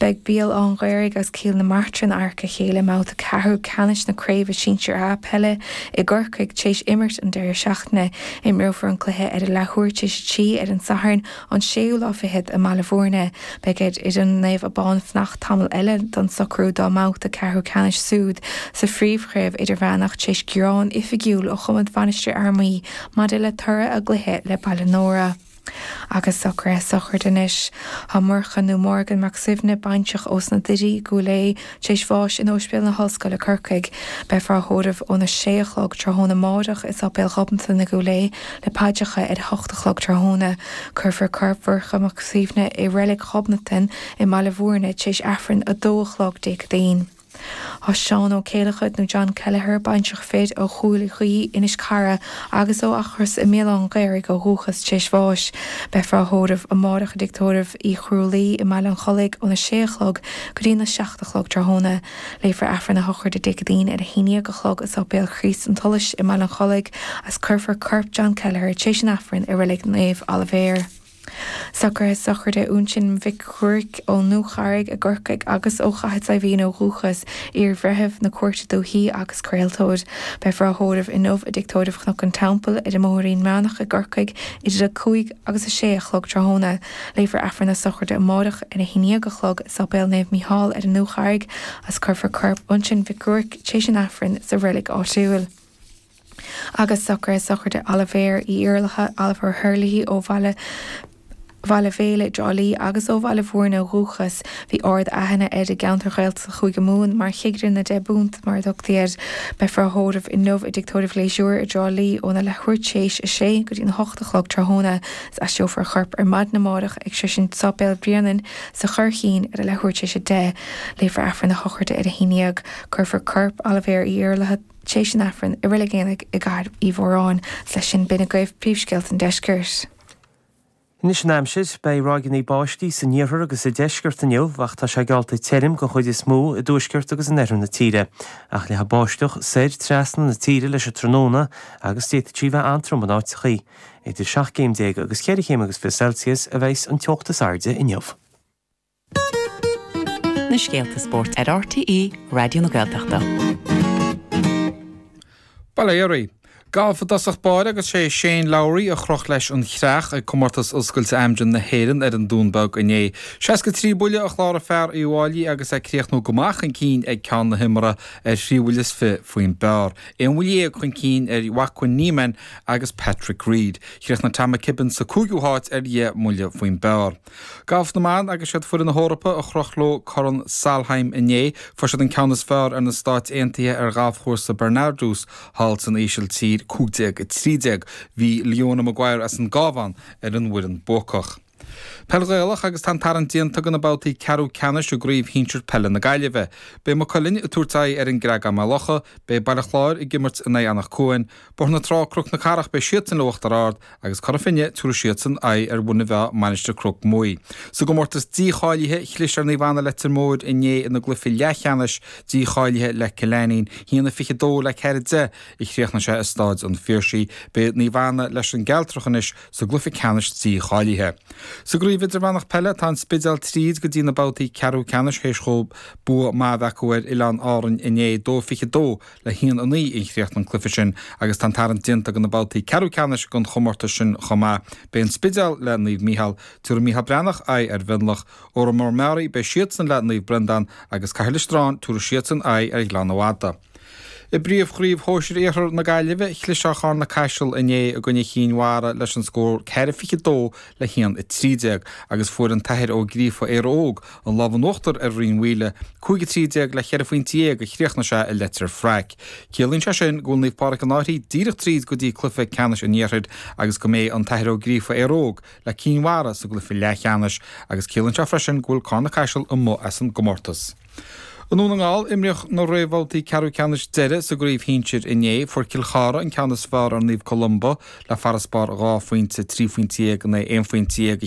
Beidh Béal Átha'n Ghaorthaidh agus Cill na Martra in adharca a chéile i mbabhta ceathrú ceannais na Craoibhe Sinsir A peile i gCorcaigh tar éis imirt an deireadh seachtaine. Imreofar an cluiche ar a leathuair tar éis a trí ar an Satharn an séú lá fichead i mBaile Bhúirne. Beidh air fhoireann Naomh Abán fanacht tamall eile d'fhonn socrú dá mbabhta ceathrú ceannais súid sa Phríomh-Chraobh Idirmheánach tar éis gearán oifigiúil ó chumann Mhainistir Fhear Maí maidir le toradh a gcluiche le Baile Nóra. Agus socraithe sochraid anois. Tá Murchadh, nó Morgan, Mac Suibhne, baintreach ós na Doirí, i gCúil Aodh, tar éis bháis in Ospidéal na hOllscoile, Corcaigh. Beifear á thórramh óna sé a chlog tráthnóna máireach i Sáipéal Ghobnatan i gCúil Aodh le paidreacha ar a hocht a chlog tráthnóna. Cuirfear corp Mhurchadh Mac Suibhne i Reilig Ghobnatan i mBaile Mhúirne tar éis Aifreann a dó a chlog Dé Céadaoin. Tá Seán Ó Céileachair, nó John Kelleher, baintreach fir ó Chúil Ghaoith, Inis Cara, agus ó Eachros i mBéal Átha'n Ghaorthaidh ó dhúchas téis bháis. Beifear á thórramh amárach i dTigh Tórraimh Uí Chrualaoi i mBaile an Chollaigh óna sé a chlog go dtí na seacht a chlog tráthnóna. Léifear Aifreann a shochraide Dé Céadaoin ar a haon dhéag a chlog i Sáipéal Chríost an tSolais i mBaile an Chollaigh agus cuirfear corp John Kelleher téis an Aifrinn i Reilig Naomh Oilibhéar. Socraithe sochraide Uinsionn Mhic Ghruairc ón Dúcharraig i gCorcaigh agus ó Chathair Saidhbhín ó dhúchas, iar-bhreitheamh na Cúirte Dúithí agus craoltóir. Beifear á thórramh inniu i dTigh Tórraimh Chnoc an Teampaill ar an mBóthairín mBreathnach i gCorcaigh idir 5 agus 6 a chlog tráthnóna. Léifear Aifreann na Sochraide amárach ar a haon dhéag a chlog i Sáipéal Naomh Mícheál ar an Dúcharraig agus cuirfear corp Uinsionn Mhic Ghruairc tréis an Aifrinn sa reilig áitiúil. agus sochraide, sochraide Oilibhéir Uí Iarlaithe, Oliver Herlihy, ó Bhaile Bhéal i dTrá Lí agus ó Bhaile Bhúirne ó dhúchas. Bhí ard aithne air i gceantair Ghaeltachta Chúige Mumhan mar chigire na Deich bPúnt, mar a thugtaí air. Beifear á thórramh inniu i dTigh Tórraimh Ghliasáin i dTrá Lí óna leathuair théis a sé go dtí'n hocht a chlog tráthnóna is aistreofar a chorp ar maidin amárach go dtí Sáipéal Bhréanainn sa Churraichín ar a leathuair théis a deich. Léifear Aifreann a shochraide ar a haon dhéag. Cuirfear corp Oilibhéir Uí Iarlaithe. théis an Aifrinn i Reilig Eanaigh i gCathair Uí Mhóráin. 's leis sin b'in agaibh príomhscéalta an Deiscirt. Anois an aimsir, beidh ráigeanna báistí san iarthar agus sa deisceart inniu ach tá sé geallta tirim den chuid is mó i dtuaisceart agus in oirthear na tíre. Ach leathfaidh báisteach soir trasna na tíre leis an tráthnóna agus d'fhéadfadh sí bheith an-trom in áiteachaí. Idir seacht gcéim déag agus cheithre chéim agus fiche Celsius a bheidhs an teocht is airde inniu. na scéalta spóirt ar RTÉ Raidió na Gaeltachta. Ba léir í. Galf i dtosach báire agus sé Shane Lowry a chroch leis an chreach ag Comórtas Oscailte Amgen na hÉireann ar an Dún Beag inné. Seasca trí buille a chláraigh fear Uíbh Fháilí agus é ag críochnú go maith chun cinn ag ceann na himeartha ar thrí bhuille is fiche faoin bpar. Aon bhuille dhéag chun cinn ar Joaquin Niemann agus Patrick Reed. Chríochnaigh Tom McKibbin sa cúigiú háit ar dheich mbuille faoin bpar. Galf na mban agus siad foireann na hEorpa a chroch leo Corn Solheim inné. Fuair siad an ceann is fearr ar na Stáit Aontaithe ar ghalfchúrsa Bernardus thall san Ísiltír 15 13. Bhí Leona Maguire as an gCabhán ar an bhfoireann buacach. Peil Ghaelach agus tá an tarraingt déanta go na babhtaí ceathrú ceannais i gCraobh Shinsir Peile na Gaillimhe. Beidh Maigh Cuilinn ag tabhairt aghaidh ar an gCreagán Maigh Locha, beidh Baile Chláir ag imirt in aghaidh Eanach Cuain, Bóthar na Trá Cnoc na Cathrach beidh siadsan le Uachtar Ard agus Cora Finne tabharfaidh siadsan aghaidh ar Mhuine Mheá Mainistir Cnoc Muaidh. Sa gcomórtas dícháilithe, chlis ar Naomh Anna Leitir Móir inné ina gcluiche leathcheannais dícháilithe le Cill Ainnín, haon a 22 le 4 10 a chríochnaigh sé i Stáid an Phiarsaigh. Beidh Naomh Anna leis an gCealtrach anois sa gcluiche ceannais dícháilithe. Sa gCraobh Idirmheánach Peile tá an Spidéal tríd go dtí na babhtaí ceathrú ceannais théis dhóibh bua maith a bheith acu ar Oileán Árainn inné, 2 22 le haon a naoi a chríochnaigh an cluiche sin agus tá an tarraingt déanta go na babhtaí ceathrú ceannais den chomórtas sin chomh maith. Beidh an Spidéal le Naomh Micheál, tabharfaidh Micheál Breathnach aghaidh ar Mhionlach, Órán Mór Meáraí beidh siadsan le Naomh Breandán agus Cathair Loistreáin, tabharfaidh siadsan aghaidh ar Ghleann na Madadh. I bpríomhchraobh shóisir Iarthar na Gaillimhe, chlis ar Charna Caiseal inné i gcoinne Chinn Mhara leis an scór ceithre 22 le haon 13 agus fuair an tAthair Ó Gríofa, Éire Óg, An lámh in uachtar ar Rinn Mhaoile, cúig a trí déag le cheithre phointe dhéag a chríochnaigh sé i Leitir Fraic. Ciallaíonn sé sin go bhfuil Naomh Pádraig An Fhairche díreach tríd go dtí cluiche ceannais an iarthair agus go mbeidh an tAthair Ó Gríofa, Éire Óg, le Cinn Mhara sa gcluiche leathcheannais agus ciallaíonn sé freisin go bhfuil Carna-Caiseal amuigh as an gcomórtas. I nDún na nGall, imríodh na réamhbhabhtaí ceathrú ceannais deiridh sa gcraobh shinsir inné. Fuair Cill Chartha an ceann is fearr ar Naomh Columba le farasbarr dhá phointe, trí phointe dhéag in aghaidh aon phointe dhéag, a